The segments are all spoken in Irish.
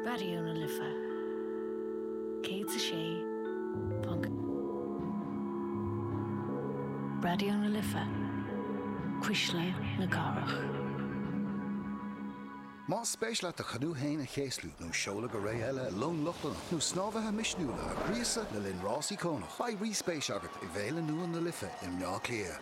Raidió na Life 106.4. Raidió na Life, cuisle na cathrach. Más spéis leat do chanú féin a chéaslú nó seoladh go ré eile i long Lochlannach nó snámhaithe misniúla a ghríosadh le linn rás íocónach, beidh ríspéis agat i bhFéile Nua na Life i mBleá Cliath.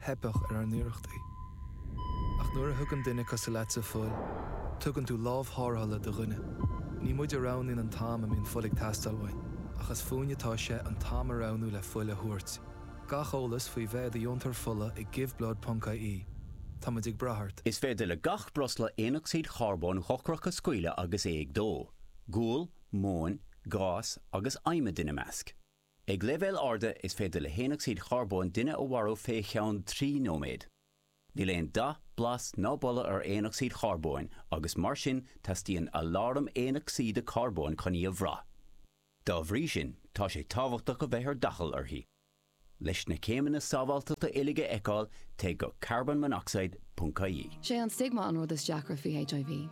theipfeadh ar ár n-iarrachtaí. Ach nuair a thugann duine cosúil leatsa fuil, tugann tú lámh thárrthála do dhuine. Ní muid a roghnaíonn an t-am a mbíonn fuil ag teastáil uainn, ach is fúinne atá sé an t-am a roghnú le fuil a thabhairt. Gach eolas faoi bheith i do dheontóir fola ag Giveblood ponc IE. Táimid ag brath ort. Is féidir le gach breosla aonocsaíd charbóin dhochrach a scaoileadh agus é ag dó, gual, móin, gás agus adhmad ina measc. Ag leibhéal ard is féidir le haonocsaíd charbóin duine a mharú fé cheann trí nóiméad. Níl aon dath, blas ná boladh ar aonocsaíd charbóin agus mar sin teastaíonn aláram aonocsaíde carbóin chun í a bhraith. Dá bhrí sin tá sé tábhachtach a bheith ar d'fhaichill uirthi. Leis na céimeanna sábháilteachta uilig a fheiceáil téigh go carbonmonoxide.ie. Sé an stigma an rud is deacra faoi HIV.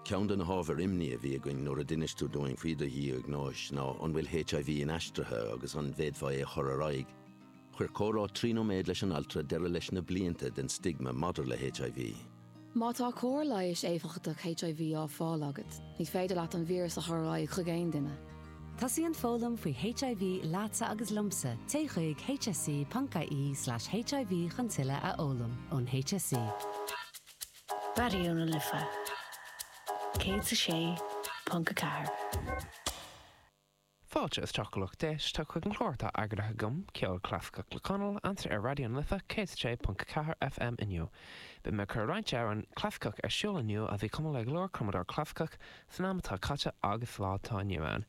Ceann de na hábhair imní a bhí againn nuair a d'inis tú dúinn faoi do dhiagnóis ná an bhfuil HIV inaistrithe agus an bhféadfá é a chur ar aghaidh. Chuir comhrá trí nóiméad leis an altra deireadh leis na blianta den stigma maidir le HIV. Má tá cóir leighis éifeachtach HIV á fáil agat, ní féidir leat an víreas a chur ar aghaidh chuig aon duine. Tosaíonn foghlaim faoi HIV leatsa agus liomsa, téigh chuig hse.ie slash hiv chun tuilleadh a fhoghlaim ón hse. Raidió na Life 106.4. Fáilte isteach a lucht éisteachta chuig an chlár atá eagraithe agam, Ceol Clasaiceach le Conall, anseo ar Raidió na Life 106.4 FM inniu. Beidh mé ag cur roinnt amhrán clasaiceach ar siúl inniu a bhí cumtha le go leor cumadóir clasaiceach san am atá caite agus sa lá atá inniu ann.